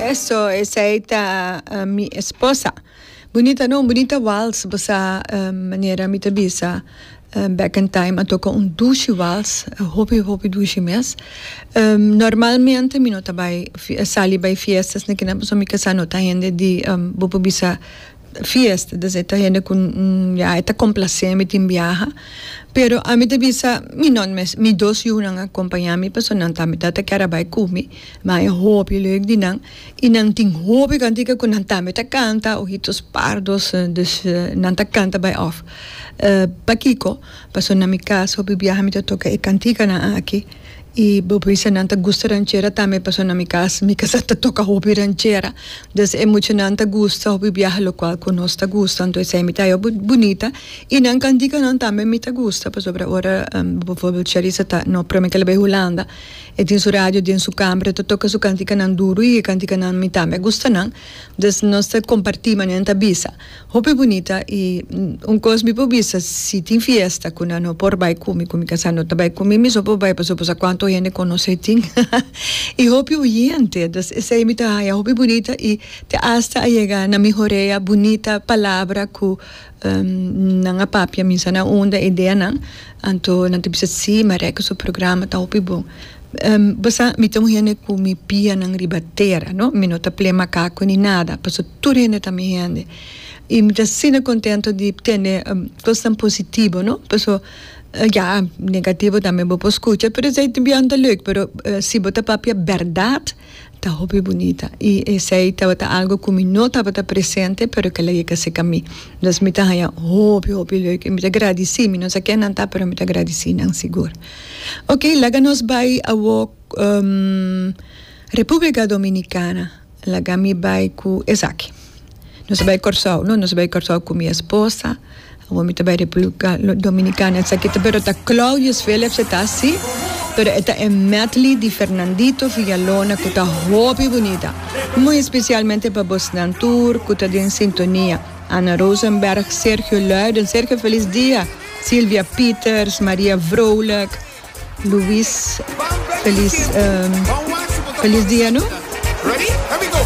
Eso esei ta mi esposa. Bunita no, bunita wals basa manera mi ta bisa back in time a toca un dushi wals hopi hopi dushi mes. Normalmente mi no ta bai sali bai fiestas na kina pasobra mi kasa no ta hende di bo por bisa fiesta entonces e ta hende cu ya e ta complace mi tin biaha pero ami ta bisa mi no mes mi dos yunan a acompaña mi pasobra nan tambe ta kier a bai cu mi mi a bay hopi lek di nan y nan tin hopi cantica cu nan tambe ta canta ojitos pardos dus nan ta canta bay off pakico pasobra na mi casa hopi biaha mi ta toca e canticanan aki. Y bo bisa nan ta gusta ranchera tambe paso na mi cas mi casa ta toca hopi ranchera dus e muchanan ta gusta hopi biaha locual cu nos ta gusta anto esey mi ta haya bunita y nan can dica nan tambe mi ta gusta pasobra ora bijvoorbeeld Sharissa ta no prome kel a bay Hulanda e tin su radio den su camber e ta toca su canticanan duro y e canticanan mi tambe a gusta nan dus nos ta comparti manera nan ta bisa. Hopi bunita y un cos mi por bisa si tin fiesta cu nan no por bay cumi cu mi casa no ta bay cumi mi so por bay pasobra por sa cuanto hende conoce tin y hopi oyente entonces esey mi ta haya hopi bunita y ta hasta a yega na mi horea bunita palabra cu nan a papia misa na unda ideanan anto nan ta bisa si Mareco su programa ta hopi bon. Bo sa, mi ta un hende ku mi pianan riba tera, no? Mi no ta play makaku ni nada, pasobra tur hende ta mi hende. I mi ta asina kontento di tene kos tan positivo, no? Pasobra, ya, negativo tambe bo por skucha, pero esei biaha no ta leuk, pero si bo ta papia bèrdat, Ta hopi bunita y esey tabata algo cu mi no tabata presente pero kela yeka seca mi. Entonces mi ta haya hopi hopi leuk y mi ta gradici, mi no sa ken nan ta pero mi ta gradici nan sigur. Ok laga nos bay awo Republica Dominicana laga mi bay cu esaki. Nos a bai Kòrsou. No, nos a bai Kòrsou ku mi esposa. Awor mi ta bai Republika Dominikana. Esaki ta, pero ta Claudius Philips, e ta así, pero e ta e medley di Fernandito Villalona ku ta hopi bunita. Muy especialmente pa bosnan tur ku ta den sintonia, Anna Rosenberg, Sergio Luyden, Sergio Feliz Dia, Silvia Pieters, Maria Vrolijk, Luis Feliz, Feliz Dia, no?